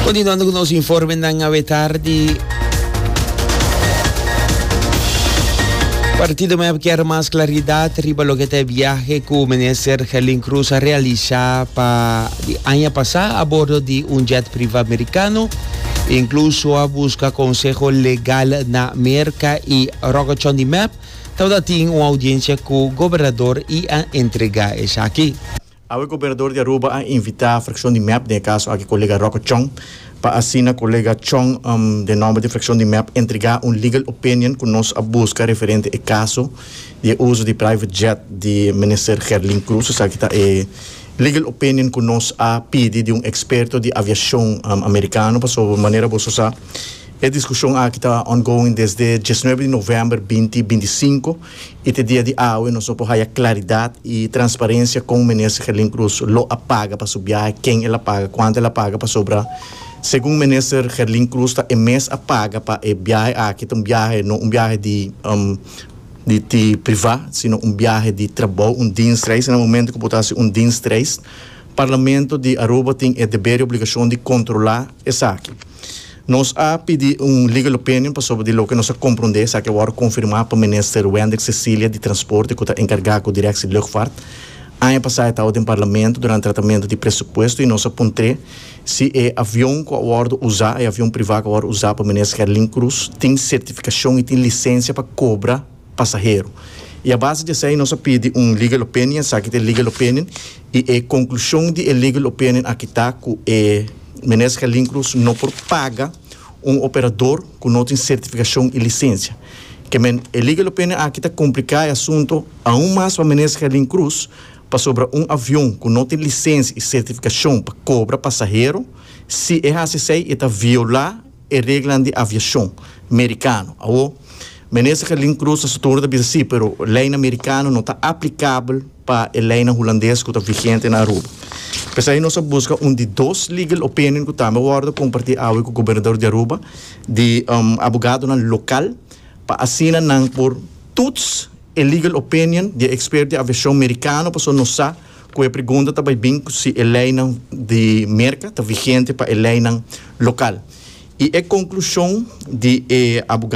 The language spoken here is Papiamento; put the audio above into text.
Continuando cu nos informenan awe tardi. Partido MEP kier mas claridad riba loke ta e biahe cu Minister Gelin Croes a realisa pa di aña pasa a bordo di un jet priva Americano. Incluso a busca conseho legal na Merca y Rockachon di MEP tabata tin un audiencia cu Gobernador y a entrega esaki. Awe Gobernadur di Aruba a invita frakshon di mep den e kaso aki kolega Rocco Chong pa asina kolega Chong den nomber di frakshon di mep entrega un legal opinion ku nos a buska referente e kaso di e uso di private jet di Minister Gerlin Cruz esaki ta e legal opinion ku nos a pidi di un eksperto di aviashon Amerikano pasobra manera boso sa e diskushon aki ta ongoing desde dies nuebe di november binti binti sinku. I te dia di awe nos lo por haya claridad y transparencia con Minister Gerlin Cruz lo a paga pa su biahe, ken el a paga, cuanto el a paga pasobra segun Minister Gerlin Cruz ta e mes a paga pa e biahe aki ta un biahe no un biahe di di priva sino un biahe di trabou, un dienstreis y na momento cu bo ta haci un dienstreis Parlamento di Aruba tin e deber y obligacion di controla esaki. Nos a pidi un legal opinion pasobra di loke nos a komprondé esaki a wòrdu konfirmá pa Minister Wendrick Cecilia di Transporte ku ta enkargá ku Direksie Lugfart. Aña pasá e tawa den Parlamento durante tratamentu di presupuesto i nos a puntr'é si e avion ku a wòrdu usá, e avion privá ku a wòrdu usá pa Minister Herlin Cruz, tin sertifikashon i tin lisensia pa kobra, pasahero. I a base di esei nos a pidi un legal opinion, esaki ta e legal opinion, i e konklushon di e legal opinion aki ta ku e Minister Gelin Cruz no por paga un operador ku no tin sertifikashon i lisensia. Ke men e legal opinion aki ta kompliká e asunto aun mas pa Minister Gelin Cruz pasobra un avion ku no tin lisensia i sertifikashon pa kobra pasahero, si e hasi esei e ta violá e reglanan di aviashon merikano. Awor, Minister Gelin Cruz ta sutundu ta bisa si, pero leinan merikano no ta aplikabel pa e leinan hulandes ku ta vigente na Aruba. P'esei nos a buska un di dos legal opinion ku tambe a wòrdu kompartí awe ku Gobernador di Aruba, di abogadonan lokal, pa asina nan por tuts e legal opinion di e eksperto di aviashon merikano pasobra nos sa Cu e pregunta ta bay bin cu si e leynan di Merca ta vigente pa e leynan local. Y e conclusion di e abogado.